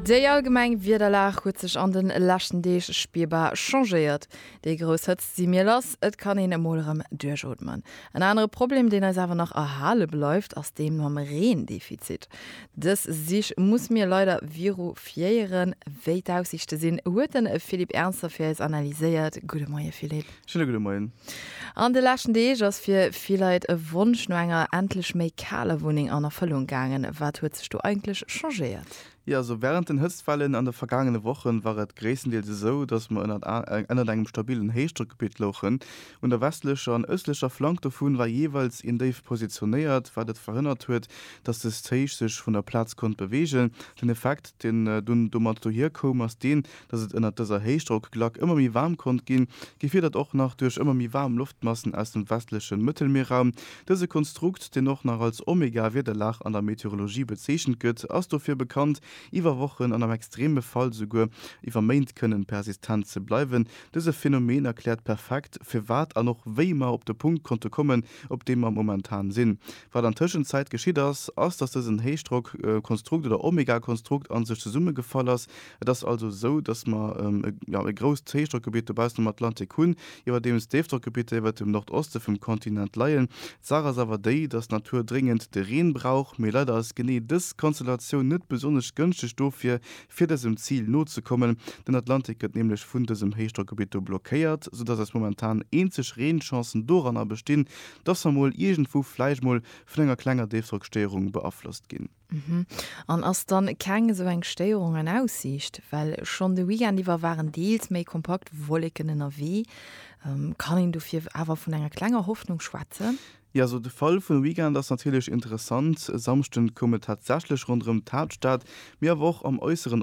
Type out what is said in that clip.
Déi allgemeng Wiederlag huet sech an de leschten Deeg spierbar changéiert. Déi grouss Hëtzt si mir lass, et kann een emol erëm duerchootmen. En anere Problem, deen eis awer nach erhale bleift, ass dee mam Reendefizit. Dës Sich muss mir leider virufiéieren. Wéi d'Aussiichte sinn, huet de Philippe Ernzer fir eis analyséiert. Gudde Moie Philippe. Schöne gudde Moien. An de leschten Deeg ass fir vill Leit e Wonsch no enger endlech méi kaler Wunneng an Erfëllung gaangen. Wat huet sech do eigentlech changéiert? Jo, also wärend den Hëtztwellen an de vergaangene Wochen war et gréisstendeels esou, dass mer ënnert ënnert engem stabilen Héichdrockgebitt louchen. Un der westlecher an ëstlecher Flank dovun war jeeweils een Déif positionéiert, wat et verhënnert huet, dass dëst Héich sech vun der Plaz konnt beweegen. Den Effekt, deen dunn domat dohir koum, ass deen, Dass et ënnert dëser Héichdrockglack ëmmer méi waarm konnt ginn, gefiedert och nach duerch ëmmer méi waarm Loftmassen aus dem westleche Mëttelmierraum. Dëse Konstrukt, deen och nach als Omega-Wiederlag an der Meteorologie bezeechent gëtt, ass dofir bekannt, iwwer Wochen an am extreme Fall souguer iwwer Méint kënnen persistent ze bleiwen. Dëse Phenomen erkläert perfekt, firwat an och wéi mer op de Punkt konnte kommen, op deem mer momentan sinn. Wat an Tëschenzäit geschitt ass, ass, dass dësen Héichdrockkonstrukt oder Omegakonstrukt a sech zesummegefall ass, Et ass also esou, dass mer e grousst Héichdrockgebitt dobaussen um Atlantik hunn, iwwerdeems Déifdrockgebitter iwwert dem Nordoste vum Kontinent leien. D'Saach ass awer déi, dass d'Natur dréngend de Reen brauch, mee leider ass genee dës Konstellatioun net besonnesch gënschteg dofir, fir dësem Zil nozekommen. Den Atlantik gëtt nämlech vun dësem Héichdrockgebitt do blockéiert, soudass eis momentan eenzeg Reenchancen doranner bestinn, dass mer mol iergendwou vläicht mol vun enger klenger Déifdrockstéierung beaflosst ginn. Mhm. An ass dann keng esou eng Stéierung an Aussiicht? Well schonn de Weekend iwwer waren deels méi kompakt Wolleken ënnerwee. Kann een dofir awer vun enger klenger Hoffnung schwätzen? Jo, also de Fall vum Weekend ass natierlech interessant. E Samschden koum et tatsächlech ronderëm d'Haaptstad, mee awer och am äusseren